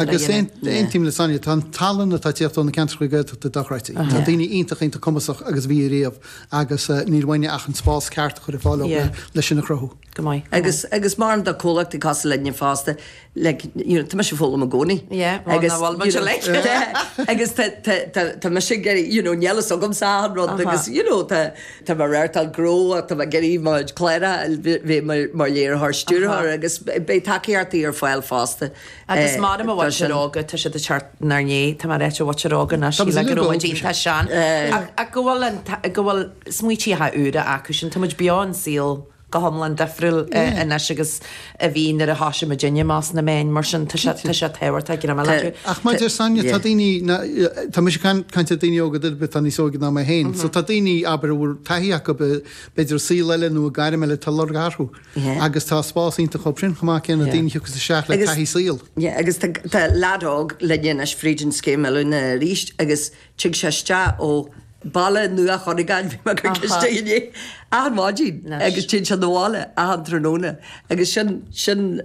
Agus aontaím le Sonia, tá an tallann atá ag teacht ó na ceantracha Gaeltachta dochreidte. Tá daoine iontach, iontach cumasach agus a bhí ariamh agus níl uainne ach an spás ceart a chur ar fáil dóibh le sin a chruthú. Agus agus mar a deirim tá comhlacht ag fás linne fosta like you know tá mise ag foghlaim i gcónaí agus agus tá tá tá tá mise ag iarraidh you know níl a fhios agamsa achan rud agus you know tá tá mé ready to grow ach tá mé ag iarraidh níos fearr a bheith mar léiritheoir, stiúrthóir agus beidh tacaíochtaí ar fáil fosta. Agus mar a deirim an mhuintir óga, tá siad ag teacht 'nár ndiaidh, tá mé ag ráit an mhuintir óga ná síl go raibh muid iontach sean, ach go bhfuil an, go bhfuil smaointí úra acu sin, tá muid beo i saol go hiomlán difriúil anois agus a bhí nuair a thoisigh muidinne ins na meáin, mar sin, tá sé tábhachtach go mbeadh acu. Ach maidir le Sonia, tá daoine, tá mise ag caint ar dhaoine óga, duine ar bith, atá níos óige ná mé féin, so tá daoine, abair, a bhfuil taithí acu, b'fhéidir, i saol eile nó i gairm eile, tá lorg orthu. Agus tá spás iontu daofa sin chomh maith, sé na daoine thiocfas isteach le taithí saoil. Agus tá leaid óg linn anois fríd an scéim oiliúna arís agus tig sé isteach ó Bhaile Nua Chuinneagáin, bhí mé chuige istigh inné, achan maidin agus téann sé 'na bhaile achan tráthnóna agus sin, sin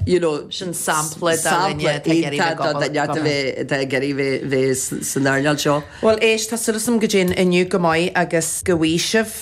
you know, sin sampla de dhuine atá ag iarraidh bheith ag obair, go maith. atá ag iarraidh bheith san earnáil seo. Bhuel éist, tá súil agam go dtéann inniu go maith agus go bhfásann.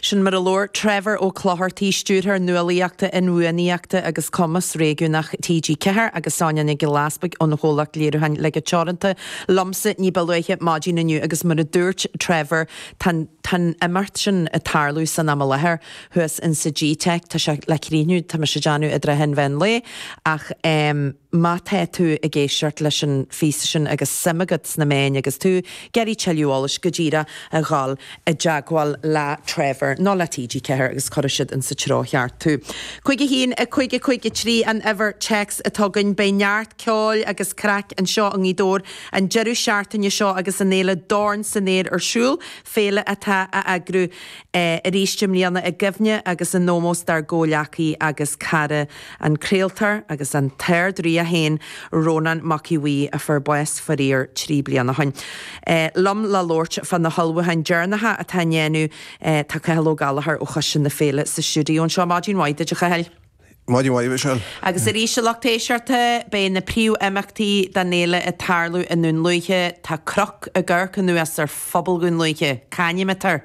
Sin mar a labhair Trevor Ó Clochartaigh, Stiúrthóir Nuálaíochta, Inbhuanaitheachta agus Cumas Réigiúnach TG4 agus Sonya Nic Giolla Easpaig ón gcomhlacht léiriúcháin Léige Teoranta, liomsa ní ba luaithe maidin inniu agus mar a dúirt Trevor, tá an t-imeacht sin ag tarlú san am i láthair thuas insa G-Teic, tá sé le críochnú, tá mise ag déanamh, i dtrátha an mheán lae ach. Má tá tú ag éisteacht leis an phíosa sin agus suim agat sna meáin agus tú ag iarraidh tuilleadh eolais go díreach a dhul i dteagmháil le Trevor nó le TG4 agus cuirfidh siad ins an treo cheart tú. 51553 an uimhir téacs atá againn. Beidh neart ceoil agus craic anseo i nGaoth Dobhair an deireadh seachtaine seo agus an fhéile Dorn san Aer ar siúl, féile atá á heagrú arís i mbliana i gcuimhne agus in ómós dár gcomhghleacaí agus cara. An craoltóir agus an tArd-Rí é féin, Rónán Mac Aodh Bhuí, a fuair bás, faraor, trí bliana ó shin. Liom le labhairt fá na hullmhúcháin deireanacha atá á ndéanamh tá Cathal Ó Gallchóir ó Choiste na Féile sa stiúideo anseo. Maidin mhaith duit, a Chathail. Maidin mhaith, a Mhichelle. Agus ar ndóigh a lucht éisteachta, beidh na príomhimeachtaí den fhéile ag tarlú i nDún Lúiche. Tá cnoc ag coimhéad anuas ar phobal Dhún Lúiche. Cá hainm atá air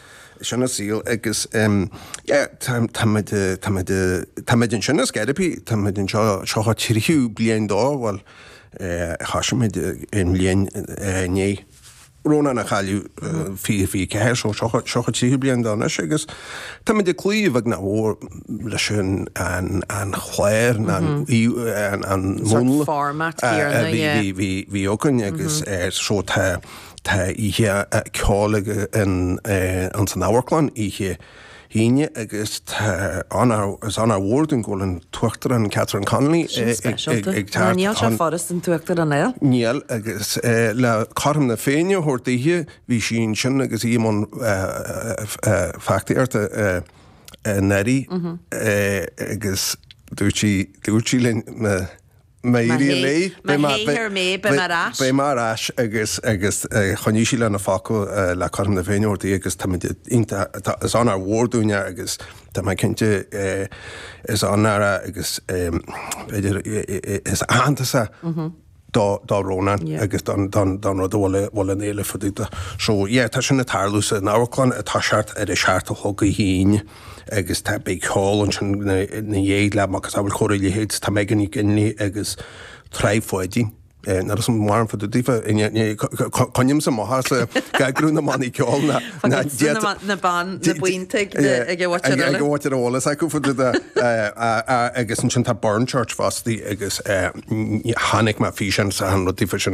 Sin an saol agus tá muid ansin i Scairope, tá muid anseo seo an tríú bliain dó, bhuel thosaigh muid an bhliain i ndiaidh Rónán a chailleadh, fiche fiche ceathair, so seo an tríú bliain dó anois agus tá muid ag cloí a bheag nó a mhór leis an chlár nó an múnla a bhí againn agus so tá. Tá oíche ceoil againn ins an amharclann oíche hAoine agus tá is onóir mhór dúinn go bhfuil an tUachtarán Catherine Connolly ag teacht chugainn. Sin speisialta mar níl sé furast an tUachtarán a. Níl agus le cothrom na Féinne a thabhairt daoithe bhí sí ansin agus í i mbun feachtasaíochta anuraidh agus dúirt sí linn na. Má éiríonn léi, beidh mé, beidh mé ar ais agus, agus choinnigh sí lena focal le cothrom na Féinne uirthi agus táimid iontach, tá, is onóir mhór dúinn é agus tá mé cinnte, is onóir é agus b'fhéidir, is aitheantas é do, do Rónán agus don, don, don rud a bhfuil, a bhfuil an fhéile fá dtaobh de. So yeah, tá sin ag tarlú san amharclann, ag toiseacht ar a seacht a chlog Oíche Aoine. agus tá, beidh ceol ansin ina dhiaidh le macasamhail chóir a leithéid, tá Megan Nic Fhionnghaile agus Trá Pháidín, nuair is maireann fá dtaobh daofa, coinnímse amach as eagrú na mbannaí ceoil ná déanta na buíon tigh ag a bhfaightear eolas, ag a bhfaightear eolas acu fá dtaobh de, agus ansin tá Burnchurch fosta agus tháinig mé ar físeán, tá an rud daofa sin.